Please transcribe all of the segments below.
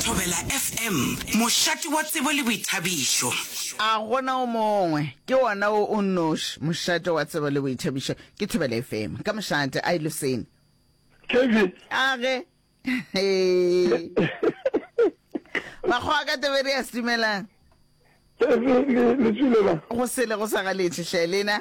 Thobela FM, mošate wa tsebo le boithabišo. A go na o mongwe? Ke wona wo o nnoši, mošate wa tsebo le boithabišo. Ke Thobela FM. Ka mošate, a e loseni. Kevin. A ge. Makgowa ka Tiberias, dumelang. Kevin, le tswilela. Go sele go sa galetše, hle, lena.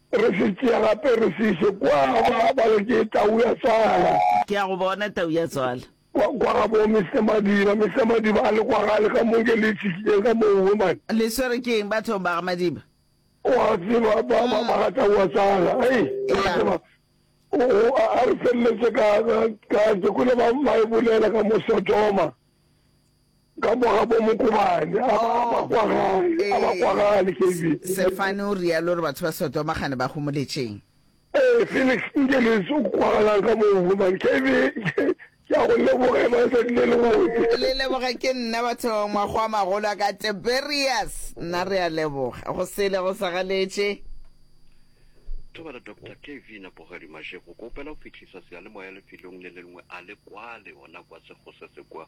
Re se tšee gape re se ise kwa, ba, ba re ke tau ya tswala. Ke a go bona, tau ya tswala. Kwa, kwa ga bo Mister Madiba. Mister Madiba a le kwa gale ka mo, ke le itshišitšeng ka mo, woman. Le swerwe ke eng bathong ba ga Madiba? O a tseba, ba, ba, ba ga tau ya tswala. Hei, o a tseba, o, o, a, a re feleletše ka, ka, ka, ke kwele ba, ba e bolela ka mo Sodoma. Ka mo ga bo Mokobane, a ba, a ba kwa gae, a ba kwa ga Ee, Alekevin. Se-, Sefane o realo gore batho ba Sodoma gane ba homoletšeng? Ee, Felix, nke le se o kwagalang ka moo, gobane ke be ke, ke ya go leboga e ba letsatsi le lebotse. Le leboge, ke nna batho, mago a magolo a ka, Tiberius, nna re a leboga, go sele go sa galetše. Thobela, Doctor Kevin a Bogadimaše, go go opela go fihlisa seyalemoya lefelong le le lengwe, a le kwale, gona kwa Segose se kwa.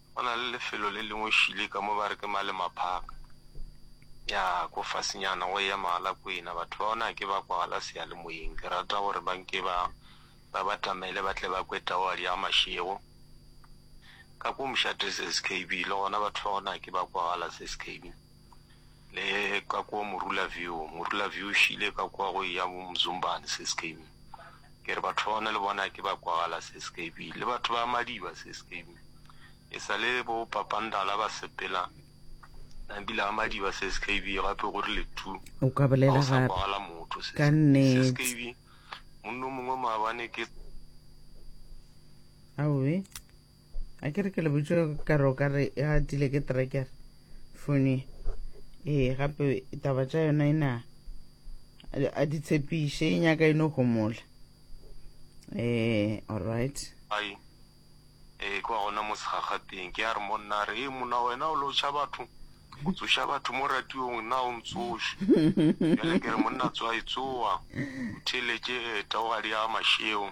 Go na le lefelo le lengwe šele ka mo ba re ke Malema Park, ya ko fasenyana go eya Mogalakwena. Batho ba gona ga ke ba kwagala seyalemoyeng. Ke rata gore ba nke ba ba batamele ba tle ba kwe taohadi ya mašego. Ka ko Mshatha SKB le gona batho ba gona ga ke ba kwagala SKB. le ka kwa morula view morula view šile ka kwa go ya bo mzumbane se skb ke re batho ba ona le bona ke ba kwagala se skb le batho ba madiba se skb e sa le bo papandala ba sepela nabile a madiba se skb gape gore le tu o ka bolela gape kwagala motho se skb munno mongwe maabane ke awe a ke re ke lebotse ka re o ka re e gatile ke trekere fone ee gape taba tša yona e na a di tshepiše e nyaka e no gomola ee all right ai ee kwa gona mo segagateng ke a re monna re ee mona wena o lotšha batho o tsoša batho mo radiong na o ntsoše bjale ke re monna tswa e tsoa o theletše ee taogadi ya mašeo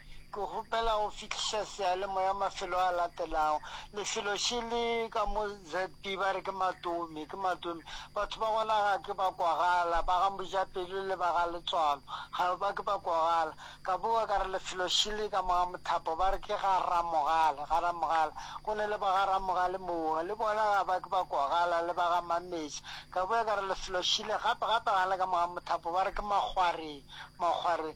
Ke kgopela go fihliša seyalemoya mafelo a latelago, lefelo še le ka mo ZB ba re ke Matome, ke Matome. Batho ba gona ga ke ba kwagala, ba ga Mojapelo le ba ga Letswalo ga ba ke ba kwagala. Ka bowa ka re lefelo še le ka mo ga Mothapo, ba re ke ga Ramogale, ga Ramogale. Go ne le ba ga Ramogale mowa, le bona ga ba ke ba kwagala, le ba ga Mameša. Ka boya ka re lefelo še le gape, gape ga le ka mo ga Mothapo, ba re ke Makgwareng, Makgwareng.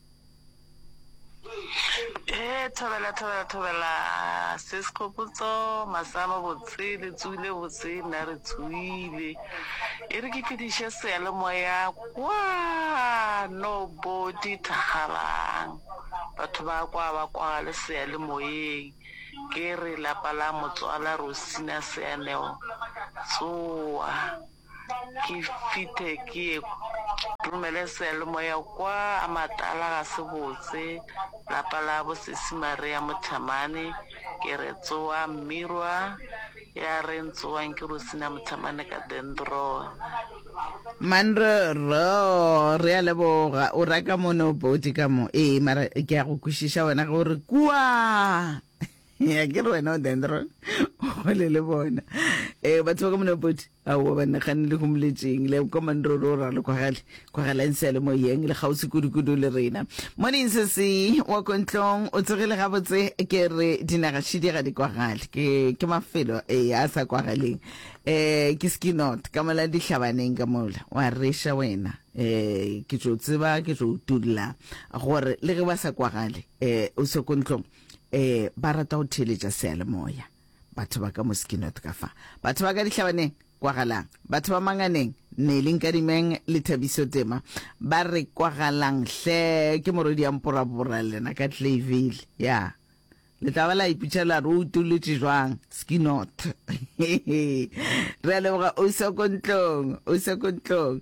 Hee thobela thobela thobela sis Kgopotso masea mabotse le tsohile botse nna re tshohile e re ke fediše seyalemoya kwano bo di thakgalang batho ba kwa ba kwa le seyalemoyeng ke re lapa la motswala Rosina Seaneo tsoa. Ke fithe ke ye romele sealemoya kwa a matala ga se botse lapa la bo sesi Maria Mothamane ke re tsoa mmirwa ya reng tsoang ke Rosina Mothamane ka Dendron. Manro rro re a leboga o ra ka mo ne o poti ka mo ee mara ke ya go kwešiša wena ge o re kua. ya ke re wena o dendron gole le bona um batho ba ka mona poti aowa ba nagane le humoletseng le kwa mandroro o ralo kwagale kwagalang seale mo yeng le kgauswi kudukudu le rena morning sese wa kontlong o tsogile gabotse ke re dinagashidi ga di kwagale ke ke mafelo e a sa kwagaleng um ke skinot ka mola dihlabaneng ka mola wa reša wena um ke tso tseba ke tso tulla gore le ge ba sa kwagale um o se kontlong eh ba rata go theeletša seyalemoya batho ba ka mo skinot ka fa batho ba ka dihlabaneng kwagalang batho ba manganeng neling ka dimeng le thabiso tema ba re kwagalang hle ke morodi ya mporabora lena ka tlavile ya yeah. le tla ba la ipitša la re o utolotše jwang skinot re a leboga o se ko ntlong o se ko ntlong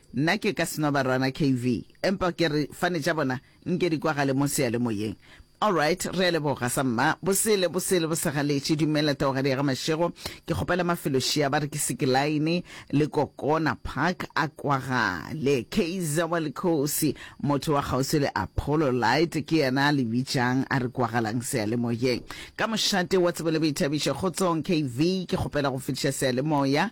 Nna ke ka seno barwana KV, empa ke re fane tša bona nke di kwagale mo seyalemoyeng. Alright, re a leboga sa mma. Bosele, bosele bo segaletše. Dumela Taogadi ga Mashego. Ke kgopela mafelo šia ba re ke Sikilaene le Kokona Park a kwagale. Kaizer wa Likhosi, motho wa kgauswi le Apollo Light ke yena a le bitšang a re kwagalang seyalemoyeng. Ka mošate wa tsebo le boithabišo. Kgotsong KV, ke kgopela go fetiša seyalemoya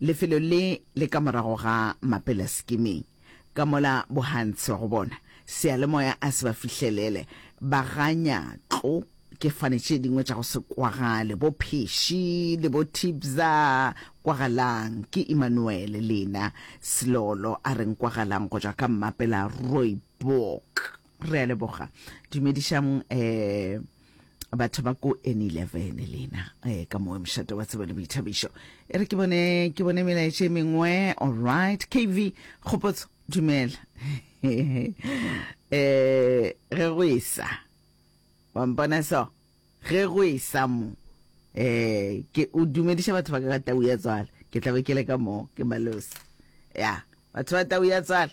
Lefelo le le ka morago ga Mapela sekimeng, ka mola Bohantse go bona seyalemoya a se ba fihlelele. Ba ga Nyatlo ke fane tše dingwe tša go se kwagale, bo Pheši le bo Thibza. Kwagalang, ke Emmanuel Lena Selolo a re nkwagalang go tšwa ka Mmapela Rooiboek. Re a leboga. Dumedišang eh, batho ba ko N11 lena eh, ka moe mošate wa tsebo le boithabišo. E re ke bone, ke bone melaetše e mengwe. All right. KV, kgopotso, dumela. eh, ge go esa. Wa mpona so? Ge go esa mo. Eh, ke o dumediša batho ba ka ka tau ya tswala. Ke tla be ke le ka moo, ke malosi. Ya, batho ba tau ya tswala.